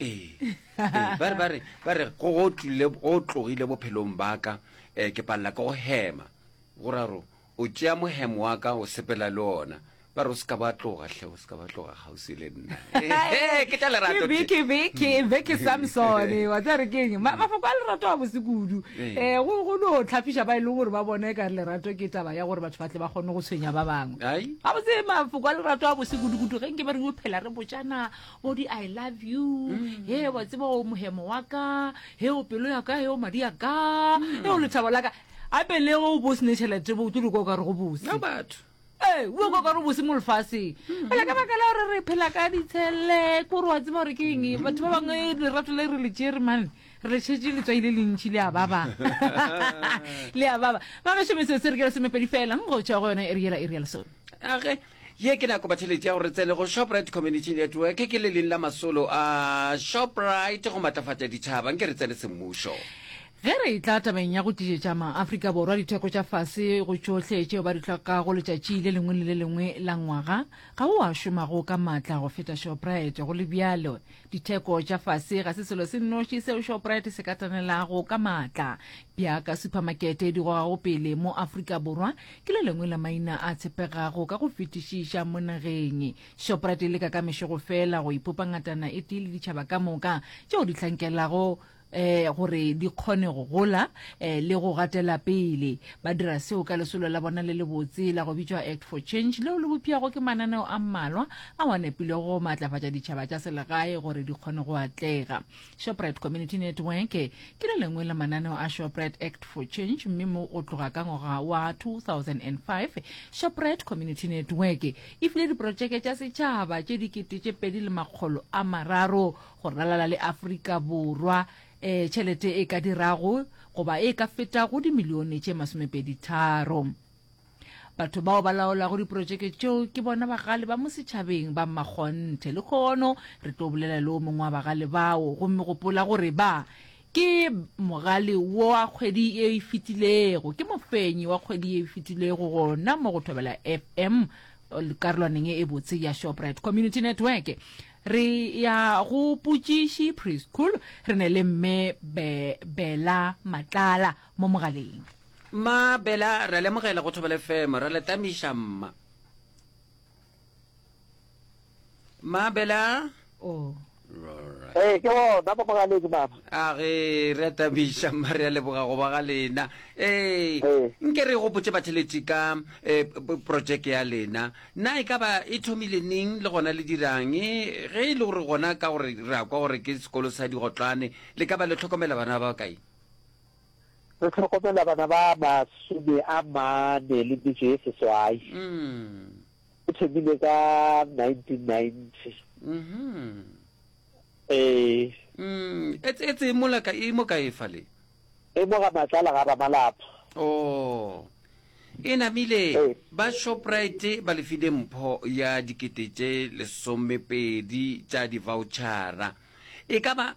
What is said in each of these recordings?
ee ee, ba re ba re ba re go go tlile go tlogile bophelong ba ka um ke palela ke go hema go ra gore o tšea mohemo wa ka o sepela le ona ba re o se ka ba tloga hle o se ka ba tloga kgauswi le nna Ehe, ke tša lerato tše. kebekebeke beke samsone wa tsa re keng Ma- mafoko a lerato a bose kudu Ee. um go go no tlhafiša ba e leng gore ba bona e ka re lerato ke taba ya gore batho ba tle ba kgone go tshwenya ba bangwe Ai. ga botse mafoko a lerato a bose kudu-kudu ge nke ba re o phela re botšana o di i love you mm. he wa tseba o mohemo wa ka he o pelo ya ka he o madi ya ka he o mm. lethabo la ka gape le go o bo sene tšhelete bo o tlo diko o ka re go bose batho ee o ka gore bose mo lefaseng mm. fela ka baka la gore re phela ka ditshele kore wa tseba gore ke eng mm. batho ba bangwe lerato le re le tsere mane re le tšhetse letswai le lentšhi le a baba le a baba ba mešomese se re ke le semepedi fela go tšwa go yone e re ela e re ya lesone age Ye ke nako batheletši ya gore re tsene go Shoprite Community Network, ke le leng la masolo a Shoprite go matlafatša ditšhaba, nke re tsene semmušo. Ge re etla tabeng ya go tlišetša maAfrika Borwa ditheko tša fase go tšohle tšeo ba di hlokago letšatši le lengwe le le lengwe la ngwaga, ga go a šomago ka matla go feta Shoprite. Go le bjalo, ditheko tša fase ga se selo se nnoši seo Shoprite se ka tanelago ka matla. Bjaka suphamakete e di gogago pele mo Afrika Borwa, ke le lengwe la maina a tshepegago ka go fetišiša mo nageng shoprite e leka ka mešogo fela go ipopa ngatana e tee le ditšhaba ka moka tšeo di hlankelago eh gore di kgone go gola eh le go gatela pele ba dira seo ka lesolo la bona le le botse la go bitšwa act for change leo le bopjago ke mananeo a mmalwa a wa nepilego go maatlafatša ditšhaba tša selegae gore di kgone go atlega Shoprite Community Network ke le lengwe la mananeo a Shoprite Act for Change mme mo go tloga ka ngwaga wa 2005 Shoprite Community Network e file diprotšeke tša setšhaba tše dikete tše pedi le makgolo a mararo go ralala le Afrika Borwa um tšhelete e ka dirago goba e ka fetago dimilione tše masomepedi tharo Batho bao ba laolago diprotšeke tšeo ke bona bagale ba mo setšhabeng ba mmakgonthe. Le kgono re tlo bolela le o mongwe wa bagale bao gomme gopola gore ba ke mogale wa kgwedi e e fetilego ke mofenyi wa kgwedi e e fetilego gona mo go thobela fm karolwaneng e botse ya shoprite community network re ya go putšiši preschool re ne le mme bela matlala mo mogaleng. Mma Bela, ra lemogela go thobela FM, ra letamiša mma. Mma Bela. Oh. Ee, eh, ke gona mo mogaleng mama. A ge re atamiša mma re a leboga go ba ga lena. Ee, eh, nke re gopotse batheleti ka eh, projeke ya lena. Na e ka ba e thomile neng le gona le dirang? Ge e le gore gona ka gore re a kwa gore ke sekolo sa digotlwane, le ka ba le tlhokomela bana ba kae? Go hlokomela bana ba masome a mane le metšo ye seswai go thomile ka 1990. E etse e mola ka e mo ka e fale. E mo ga matlala ga Ramalapa. Oh. E namile ba Shoprite ba lefile mpho ya dikete tše lesomepedi tša di-vouchara. E ka ba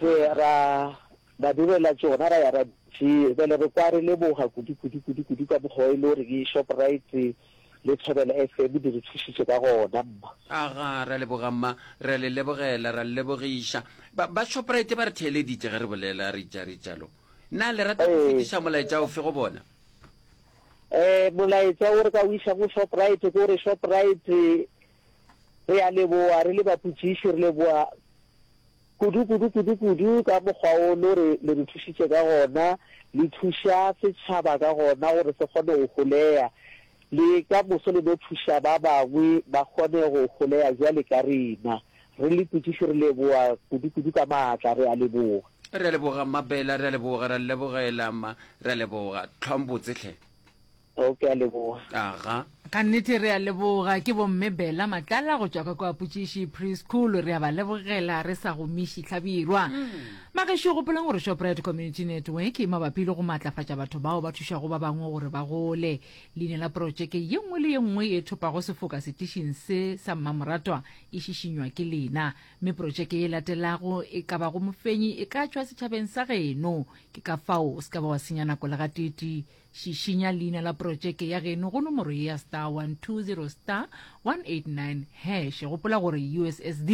Re, ra, ra direla tšona, ra ya ra di, bjale re kwa re leboga kudu, kudu, kudu, kudu ka mokgwa wa e le gore ke Shoprite le Thobela FM di re thušitše ka gona, mma. Aga, ra leboga, mma. Re a le lebogela, ra le lebogiša. Ba, ba Shoprite ba re theeleditše ge re bolela, re etša, re etša lo. Na le rata go fetiša molaetša ofe go bona? Ee, molaetša wo re ka o iša go Shoprite ke gore, Shoprite, re a leboga, re le bapotšiši, re leboga. Kudu, kudu, kudu, kudu ka mokgwa wo lo re, le re thušitše ka gona, le thuša setšhaba ka gona gore se kgone go holea, le ka moso le no thuša ba bangwe ba kgone go holea bjale ka rena. Re le putiši, re leboga kudu, kudu ka maatla, re a leboga. Re a leboga, Mma Bela, re a leboga, re a le lebogela, Mma, re a leboga. Tlhwang botse hle. Oh, ke a leboga. Aga. Ka nnete re a leboga. Ke bomme Bella Matlala go tšwa ka kwa Potšiši Preschool. Re a ba lebogela re sa gomiši Hlabirwa. Bagešo gopolang gore Shoprite Community Network e mabapi le go maatlafatša batho bao ba thušago ba bangwe gore ba gole. Leina la protšeke ye nngwe le ye nngwe e thopago sefoka setišing se sa mmamoratwa e šišinywa ke lena. Mme protšeke ye latelago e ka bago mofenyi e ka tšwa setšhabeng sa geno. Ke ka fao o se ka ba wa senya nako le gateetee. Šišinya leina la porotšeke ya geno go nomoro ye ya star 120 star 189 hash. Gopola gore USSD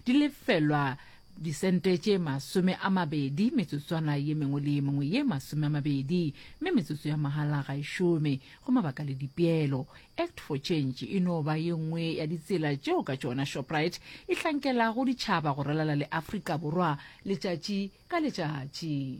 di lefelwa disente tše masome a mabedi metsotswana ye mengwe le ye mengwe ye masome a mabedi mme metsotso ya mahala ga e šome go mabaka le dipeelo act for change e no ba ye nngwe ya ditsela tšeo ka tšona shoprite e hlankelago ditšhaba go ralala le afrika borwa letšatši ka letšatši